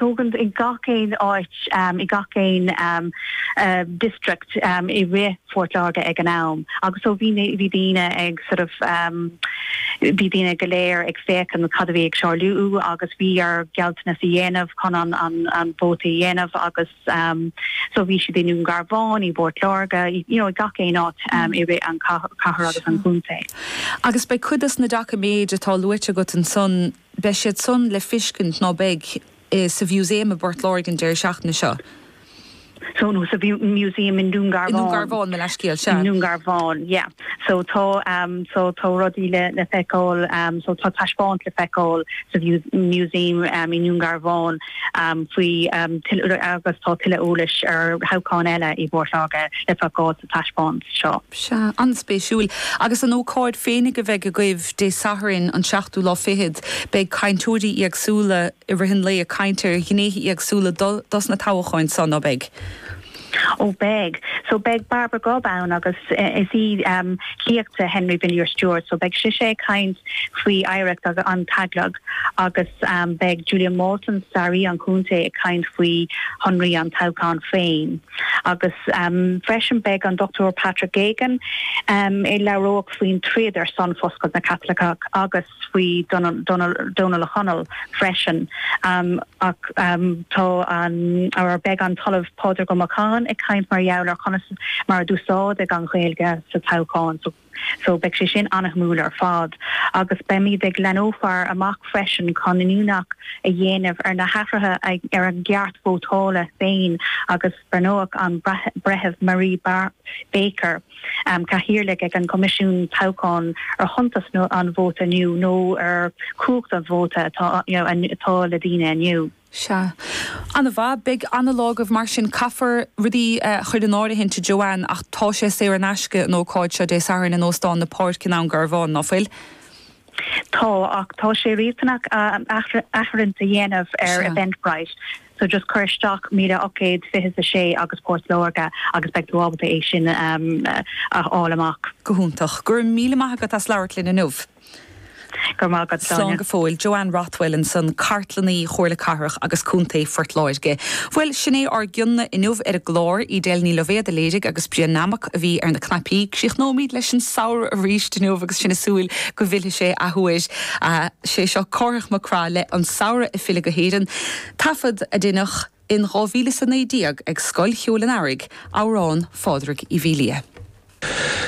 Tógaint i gach aon áit, i gach aon district i rith Phort Láirge ag an am agus so bhí na, bhí daoine ag sort of, bhí daoine go léir ag féachaint cad a bhí ag tarlú agus bhí orthu gealltanas a dhéanamh chun an, an, an vóta a dhéanamh agus so bhí siad i nDún Garbhán, i bPort Láirge, you know, i gach aon áit i rith an chathair agus an chontae. Sure. Agus beidh cuid dos na doiciméid atá luaite agat ansan Beidh siad san le feiscint, ná beidh? sa Mhúsaem i bPort Láirge an deireadh seachtaine seo. So, nó sa Mhúsaem i nDún I nDún Garbhán. Garbhán, mo leathscéal, sea. I nDún Garbhán, yeah. So tá, so tá rudaí le feiceáil, so tá taispeáint le feiceáil sa Mhúsaem i nDún Garbhán faoi, agus tá tuilleadh eolais ar thoghcháin eile i bPort Láirge le feiceáil. sa taispeántas seo. Sea, an-spéisiúil. Agus an ócáid féinig a bheidh agaibh Dé Sathairn an seachtú lá fichead, beidh cainteoirí éagsúla i rith an lae ag caint ar ghnéithe éagsúla dos na toghcháin so, ná beidh? Ó beidh. So beidh Barbara Grubb ann agus is í sliocht de Henry Villiers Stuart so beidh sise ag caint faoi oidhreacht an teaglaigh agus beidh Julian Walton, staraí an chontae ag caint faoi shonraí an toghcháin féin. Agus freisin beidh an Dr Patrick Geoghegan a labhróidh faoin troid ar son Fuascailt na gCaitliceach agus faoi Dónall Ó Conaill freisin. Ach tá an, or beidh an tOllamh Pádraig Ó Macháin ag caint mar gheall ar conas mar a d'úsáideadh an Ghaeilge sa toghchán. So beidh sé sin an-shuimiúil ar fad agus beimíd ag leanófar amach freisin chun iniúchadh a dhéanamh ar na hathruithe ar an gceart vótála féin agus beidh, ar ndóigh, an Breitheamh Marie Baker, Cathaoirleach ag an gCoimisiún Toghcháin ar thábhacht an vóta inniu nó ar chumhacht an vóta atá le daoine inniu. Seadh. Ana-mhaith. Beidh ana-lá agaibh mar sin. Caithfear rudaí a chur in áirithint a Joanne ach tá sé saor in aisce an ócáid seo Dé Sathairn in Óstán na Páirce i nDún Garbhán, ná fuil? Tá, ach tá sé riachtanach áirithint a dhéanamh ar Seadh. Eventbrite so just cuir isteach míle ocht gcéad fiche's a sé agus Port Láirge agus beidh tú ábalta é sin a fháil amach. Go hiontach. Go raibh míle maith agat as labhairt linn inniu. Go raibh maith agat, Slán Sonia. go fóill. Joanne Rothwell ansan, Cartlannaí Chomhairle Cathrach agus Contae Phort Láirge. Bhuel, sin é ár gcion-na inniu ar an gclár. Edel Ní Loibhéad a léirigh agus Brian Hammock a bhí ar na cnaipí. Críochnóimíd leis an samhradh arís inniu agus sinn ag súil go bhfillfidh sé athuair. Sé seo Cárthach Mac Craith le An Samhradh ag Filleadh go hÉirinn, taifead a deineadh in dhá mhíle is a naoi déag ag Scoil Cheoil an Earraigh, amhrán Phádraig Uí Mhiléadha.